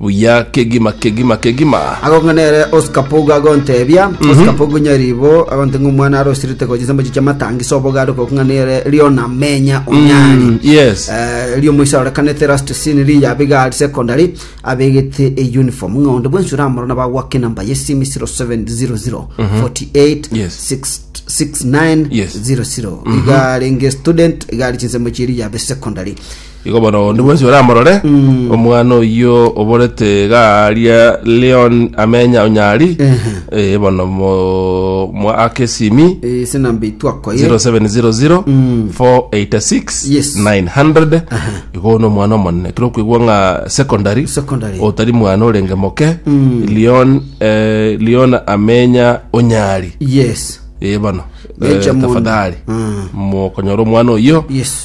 buya kegima kegima kegima. Agokong'a nere Oscar Pogu agonteebia, Oscar Pogu nyariibo agonte ng'a omwana arosirete gochia chisambo echi chi'amatangisi oboga are gokong'a nere Leona Menya Onyari. Mm, yes. Eh, eri omoisa arorekanete last scene ri ya Bigari Secondary abegete e uniform ng'a onde bwensi oramorora nabo agwake enamba ye simu 0700 48 Yes. 669 Yes. 00 iga arenge student iga ari chinsemo chieri yabe secondary Igo bono onde bwensi oramorore Mm. omwana oyio oborete iga aria Leon amenya onyari Ehe. eh, bono mo- mo akesimi Eh, ase namba itwako ye 0700 Mm. 486 Yes. 900 igo no mwana omonene kiro kwigwa ng'a secondary Secondary. otari mwana orenge moke Mm. Leon eh, Leon amenya onyari yes eh, bono eh, Benjamin. tafadhali Mm. mokonyora omwana oyio yes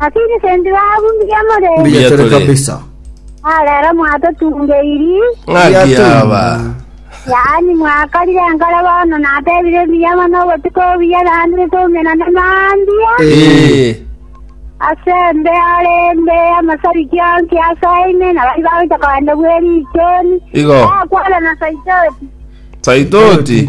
Lakini sendi babu mbuya more. Mbuya tore tore. kabisa. Ah, rero mwatotungeiri. Ng'aki Yatuma. aba. Yaani mwakarire nkare bono natebire mbuya mono obotuko obuya naende totumena nemandia. Eh. Ase mbe are mbe amasari kionsi ase aine na bari bagocha kogenda bwerichoni. Igo. Akwana na saitoti. Saitoti.